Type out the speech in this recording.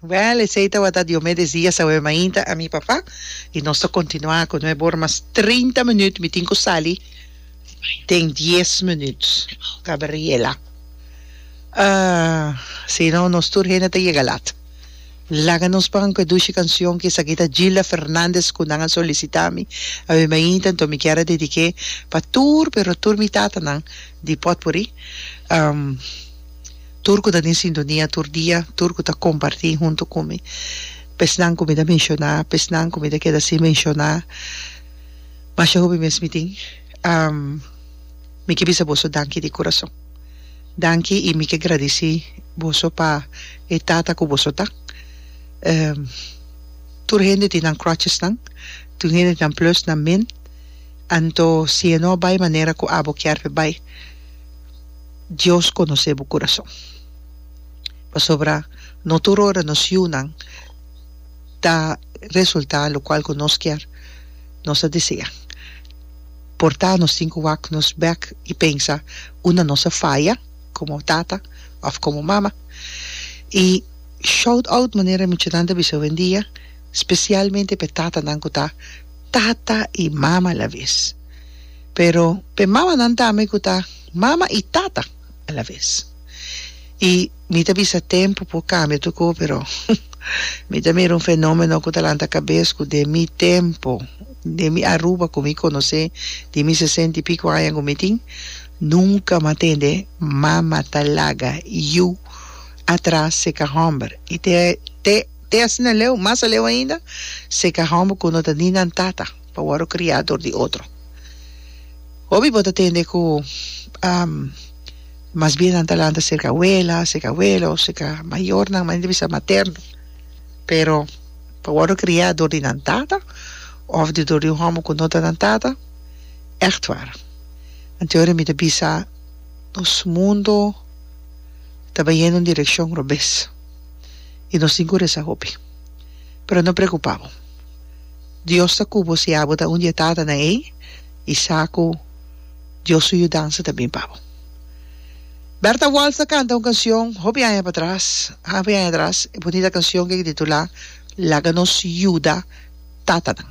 Well esey tabata Diomedes Diaz awe mainta a mi papa y nos ta continua cu nueve hora mas trinta minuut mi tin cu sali den dies minuut Gabriela ah si no nos tur hende ta yega laat. Laga nos pran cu e dushi cancion ki esaki ta Gilda Fernandez cu nan a solicita mi, awe mainta enton mi kier a dedique pa tur pero tur mi tatanan di potpuri, tur cu ta den sintonia tur dia, tur cu ta comparti hunto cu mi, pesnan cu mi ta menciona, pesnan cu mi ta keda sin menciona, masha hopi mes mi tin, mi ke bisa boso danki di curason. Danki y mi ke gradici boso pa e tata cu boso ta. Ehm, tur hende tin nan crutchesnan, tur hende tin nan plus nan min, anto si e no bay manera cu abo kier pe bay, Dios conoce bo curason. Pasobra no tur ora nos yunan ta resulta locual cu nos kier, nos ta desea. por ta nos tin cu wak nos bek y pensa un na nos a faya como tata of como mama y shout out manera e muchanan ta bisa hoendia specialmente p'e tatanan cu ta tata y mama a la vez pero p'e mamanan tambe cu ta mama y tata. alaves. I mi ta bisa tempu por cambia tur cosa, pero mi ta mira un fenomeno cu ta lanta cabes cu den mi tempo, den mi Aruba cu mi conoce, di mi sesenta y pico aña cu mi tin, nunca mi a tende mama ta laga yu atras seca homber. I te te te asina leu, mas aleu ainda, seca homber cu no ta ni nan tata. pa wòrdu kriá dor di otro. Hopi bo ta tende ku mas bien nan ta lanta serka awela, serka awelo, serka mayornan, manera di bisa materno, pero pa wòrdu kriá dor di nan tata òf di dor di un hòmber ku no ta nan tata, ègt war. Anto mi ta bisa nos mundu ta bayendo un direkshon robes i nos tin ku resa hopi. Pero no preokupá bo. Dios ta ku bo si abo ta un di e tatanan ei, i sa ku Dios su yudansa ta bin pa bo. Bertha Waltz a kanta un kansion hopi aña patras, hopi aña atras, e bunita kansion ke ke titulá Laga nos yuda tatanan.